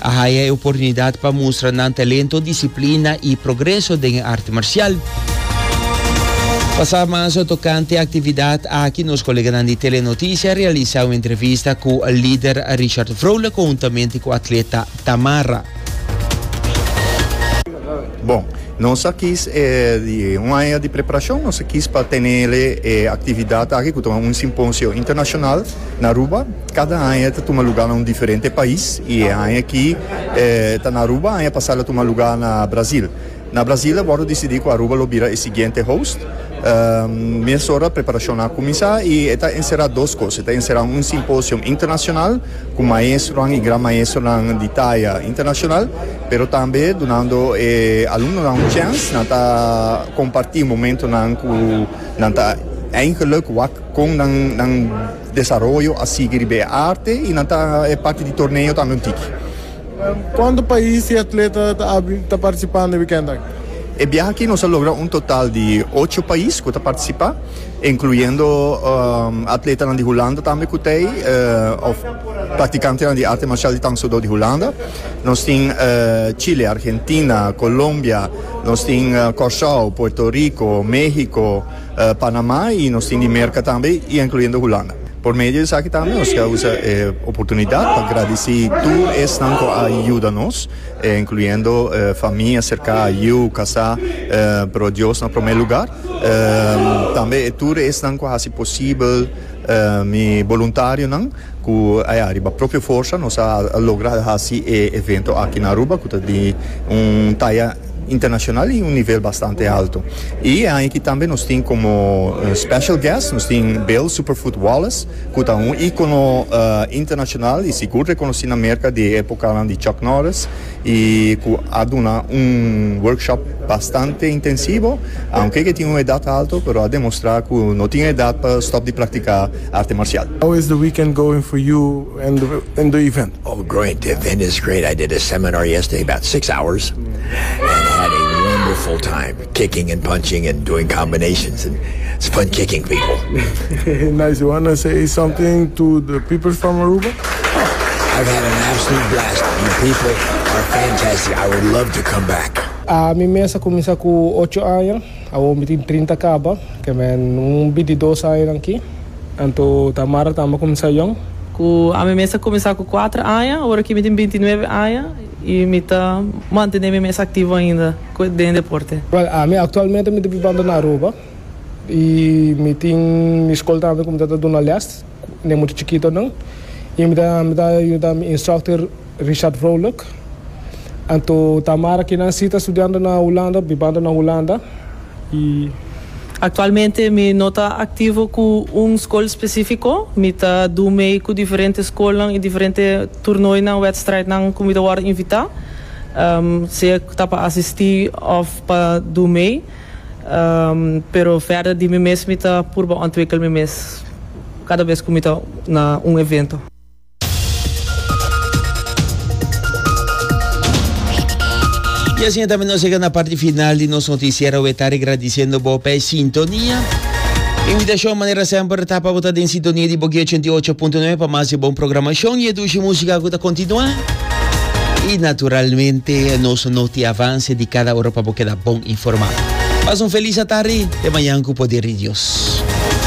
A haya e oportunidad pa mustra nan talento, disciplina y progreso den e arte marcial. Pasa marzo tocante actividad aki nos coleganan di Telenoticia a realisa un entrevista cu lider Richard Vrolijk conjuntamente cu atleta Tamara. Bon, nos a kis di un aña di preparacion, nos a kis pa tenele e actividad aki cu ta un simposio internacional na Aruba. Kada aña e ta tuma lugá na un diferente pais i e aña aki e ta na Aruba, aña pasá el a tuma lugá na Brazil. Na Brazil a wòrdu disidí ku Aruba lo bira e siguiente host. Mesora preparashonnan a kuminsá i e ta enserá dos kos. E ta enserá un simposio internashonal ku maestronan i gran maestronan di taya internashonal, pero tambe dunando e alumnonan un chèns nan ta kompartí momentonan ku nan ta eingeluk wak kon nan. Desaroyo a sigui riba e arte y nan ta e parti di torneo tambe un tiki. Cuanto pais y atleta ta participa na e weekend aki? E biaha aki nos a logra un total di ocho pais cu ta participa, incluyendo atletanan di Hulanda tambe cu ta ey of practicantenan di arte marcial di Tangsudo di Hulanda. Nos tin Chile, Argentina, Colombia, nos tin Corsow, Puerto Rico, Mexico, Panamá y nos tin Dimerca tambe y encluyendo Hulanda. Por medio di esaki tambe nos ta usa e oportunidad pa gradici tur esnan cu a yuda nos, encluyendo famia cerca, yu, casá, pero Dios na prome lugar. Tambe e tur esnan cu a haci posibel, mi boluntarionan cu aya riba propio forsa nos a logra haci e evento aki na Aruba cu ta di un taya. internacional y un nivel bastante alto. Y e aña aki tambe nos tin como special guest nos tin Bill Superfoot Wallace cu ta un icono internacional y sigur reconoci na Merca di e epocanan di Chuck Norris y cu a duna un workshop bastante intensivo. Aunke ke tin un edad alto pero a demostra cu no tin edad pa stop di practica arte marcial. How is the weekend going for you? Oh great the event is great I did a seminar yesterday about six hours and had a wonderful time kicking and punching and doing combinations and it's fun kicking people. Nice you wanna say something to the people from Aruba? I've had an absolute blast you people are fantastic I would love to come back. Mi mes a cuminsa cu ocho aña, awor mi tin trinta caba, ke men un bidi dos añanan aki. Anto ta Mara tambe ku misa young? Ku ami mes a kuminsá ku kuater aña, ora ki mi tin binti nuebe aña, i mi ta mantené mi mes aktivo ainda den e deporte. Wèl, ami aktualmente mi ta bibando na Aruba i mi tin mi skol tambe ku mi ta ta duna lès ku den mucha chikitonan i mi ta mi ta yuda mi instructor. Richard Vrolijk, Anto Tamara kinan si ta studiando na Hulanda, bibando na Hulanda, y. Actualmente mi no ta activo cu un school specifico, mi ta do mee cu diferente schoolnan y diferente toernooinan, wedstrijdnan cu mi ta worde invita, sea ta pa asisti of pa do mee, pero verder di mi mes mi ta purba ontwikkel mi mes cada vez cu mi ta na un evento. Y asina tambe nos yega na parti final di nos noticiero we ta regradiciendo bo p'e sintonia. Invitacion manera semper ta pa bo ta den sintonia di Boki 88.9 pa mas di bon programacion y e dushi musica cu ta continua. Y naturalmente nos noti avance di cada ora pa bo keda bon informa. Pas un feliz atardi, te mañan cu poder di Dios.